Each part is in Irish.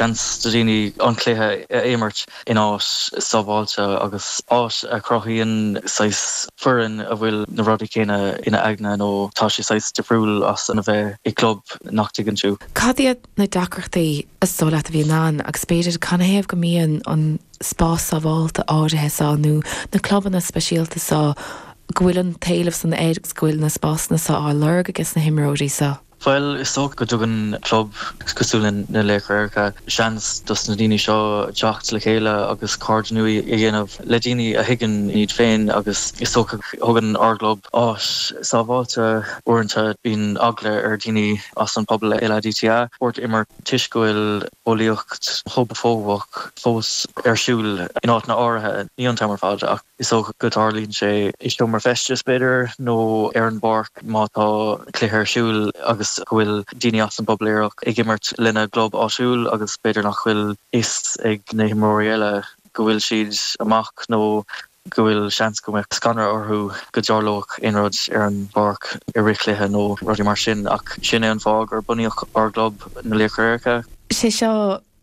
seans do dhaoine an cluiche a imirt in áit sábháilte agus áit a chruthaíonn saghas foireann a bhfuil na rudaí céanna ina n-aigne nó tá sé saghas difriúil as a bheith i gclub nach dtuigeann tú. Cad iad na deacrachtaí is dóigh leat a bhíonn ann agus b'fhéidir canathaobh go mbíonn an spás sábháilte áirithe seo nó na clubanna speisialta seo go bhfuil an t-éileamh san air agus go bhfuil na spásanna seo á lorg ages na himreoirí seo? Bhuel, is dócha go dtugann club cosúil na Laochra Aeracha seans dos na daoine seo teacht le chéile agus cairde nua a dhéanamh le daoine a thuigeann iad féin agus is dócha go thugann ár gclub áit sábháilte uaireanta bíonn eagla ar dhaoine as an pobal LADTA spórt a imirt toisc go bhfuil bulaíocht homafóbach fós ar siúl in áiteanna áirithe, ní iontu ar fad ach. Is dócha go dtarlaíonn sé i seomra feistis, b'fhéidir, nó ar an bpáirc má tá cluiche ar siúl agus go bhfuil daoine as an bpobal aerach ag imirt lena gclub áitiúil agus b'fhéidir nach bhfuil fhios ag na himreoirí eile go bhfuil siad amach nó go bhfuil seans go mbeadh scanradh orthu go dtarlódh aon rud ar an bpáirc i rith cluiche nó rudaí mar sin ach sin é an fáth gur bunaíodh ár gclub, Na Laochra Aeracha. 'Sé seo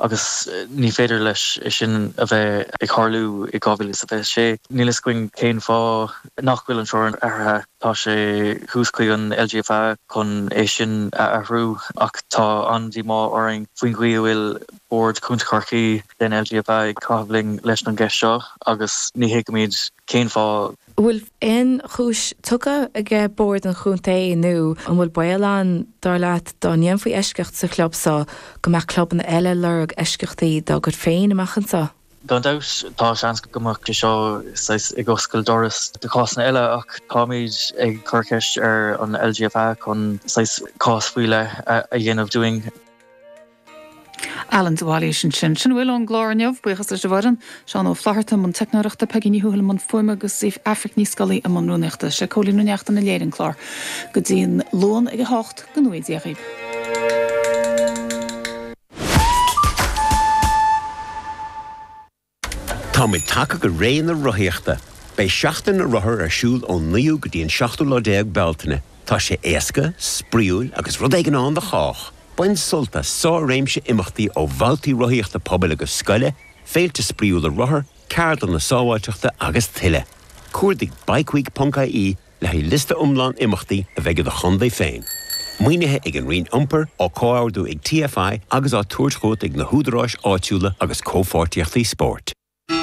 agus ní féidir leis é sin a bheith ag tharlú i 2026. Níl a fhios againn cén fáth nach bhfuil an teorainn athraithe. Tá sé thuas chuig an LGFA chun é sin a athrú ach tá an-díomá orainn faoin gcaoi a bhfuil Bord Contae Chorcaí den LGFA ag caitheamh linn leis an gceist seo agus ní thuigimid cén fáth. An bhfuil aon chúis tugtha ag Bord an Chontae nó an bhfuil baol ann, dar leat, dá ndéanfaí eisceacht sa chlub so, go mbeadh clubanna eile ag lorg eisceachtaí dá gcuid féin amach anseo? Gan dabht, tá seans go mbeadh sé seo saghas ag oscailt doras do chásanna eile ach táimid ag cur ceist ar an LGFA chun saghas cás faoi leith a dhéanamh dúinn. Alan de Bhailís ansin. Sin a bhfuil ón gclár inniu. Buíochas leis an bhfoireann, Seán Ó Flaithearta i mbun teicneoireachta, Peigí Ní Thuathail i mbun fuaime agus Aifric Ní Scolaí i mbun rúnaíochta. Is é Cóilín Ó Neachtain a léirigh an clár. Go dtí an Luan ag 8, go ngnóthaí Dia dhaoibh. Táimid tagtha go ré na rothaíochta. Beidh Seachtain na Rothar ar siúl ón 9ú go dtí an seachtú lá déag Bealtaine. Tá sé éasca, spraíúil agus rud éigin ann do chách! Bain sult as sár-réimse imeachtaí ó bhabhtaí rothaíochta pobail agus scoile, féilte spraíúla rothar, ceardlanna sábháilteachta agus tuilleadh. Cuardaigh bikeweek.ie le haghaidh liosta iomlán imeachtaí a bheidh i do chontae féin, maoinithe ag an Roinn Iompair, á comhordú ag TFI agus á tabhairt chugat ag na húdaráis áitiúla agus comhpháirtíochtaí spóirt.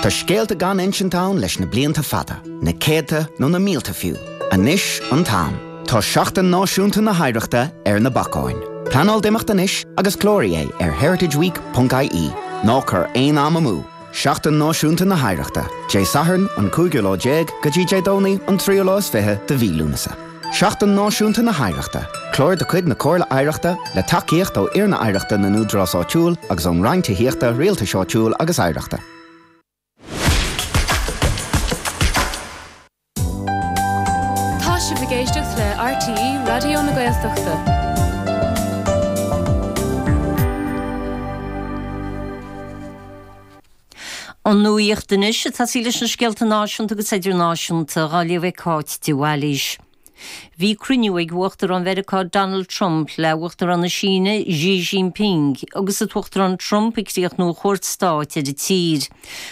Tá scéalta gan insint ann leis na blianta fada, na céadta nó na mílte fiú. Anois an t-am. Tá Seachtain Náisiúnta na hOidhreachta ar na bacáin. Pleanáil d'imeacht anois agus cláraigh é ar heritageweek.ie. Ná cuir aon am amú! Seachtain Náisiúnta na hOidhreachta, Dé Sathairn an cúigiú lá déag go dtí Dé Domhnaigh an tríú lá is fiche de mhí Lúnasa. Seachtain Náisiúnta na hOidhreachta, Clár de chuid na Comhairle Oidhreachta, le tacaíocht ó Fhoirne Oidhreachta na nÚdarás Áitiúil agus ón Roinn Tithíochta, Rialtais Áitiúil agus Oidhreachta. Tá sibh ag éisteacht le RTÉ Raidió na Gaeltachta. An nuacht anois, atá sí leis na scéalta náisiúnta agus idirnáisiúnta, á léamh ag Cáit de Bhailís. Bhí cruinniú ag Uachtarán Mheiriceá Donald Trump le hUachtarán na Síne Xi Jinping agus an tUachtarán Trump ag críochnú a chuairt stáit ar an tSín.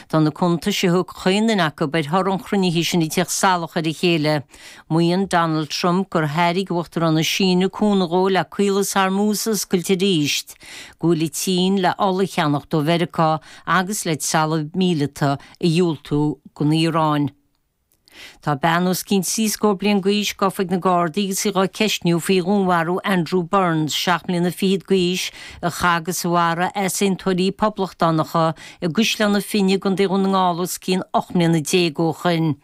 Tá na cuntais a thug chaon duine acu ar thoradh an chruinnithe sin ag teacht salach ar a chéile. Maíonn Donald Trump gur thairg Uachtarán na Síne cúnamh dhó le Caolas Hormuz a oscailt arís, go bhfuil an tSín le ola a cheannach ó Mheiriceá agus le trealamh míleata a dhiúltú don Iaráin. Tá bean os cionn trí scór bliain d'aois gofa ag na Gardaí agus í á ceistniú faoi dhúnmharú Andrew Burns, seacht mbliana fichead d'aois, a chaith agus a mharaigh easaontóirí poblachtánacha i gCaisleán na Finne i gContae Dhún na nGall os cionn ocht mbliana déag ó shoin.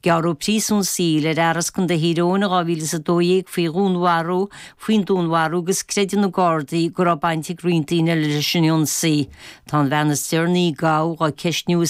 Gearradh príosún saoil ar fhear as Contae Thír Eoghain in 2012 faoi dhúnmharú faoin dúnmharú agus creideann na Gardaí go raibh baint ag roinnt daoine eile leis an ionsaí. Tá an bhean is deireanaí a gabhadh á ceistniú i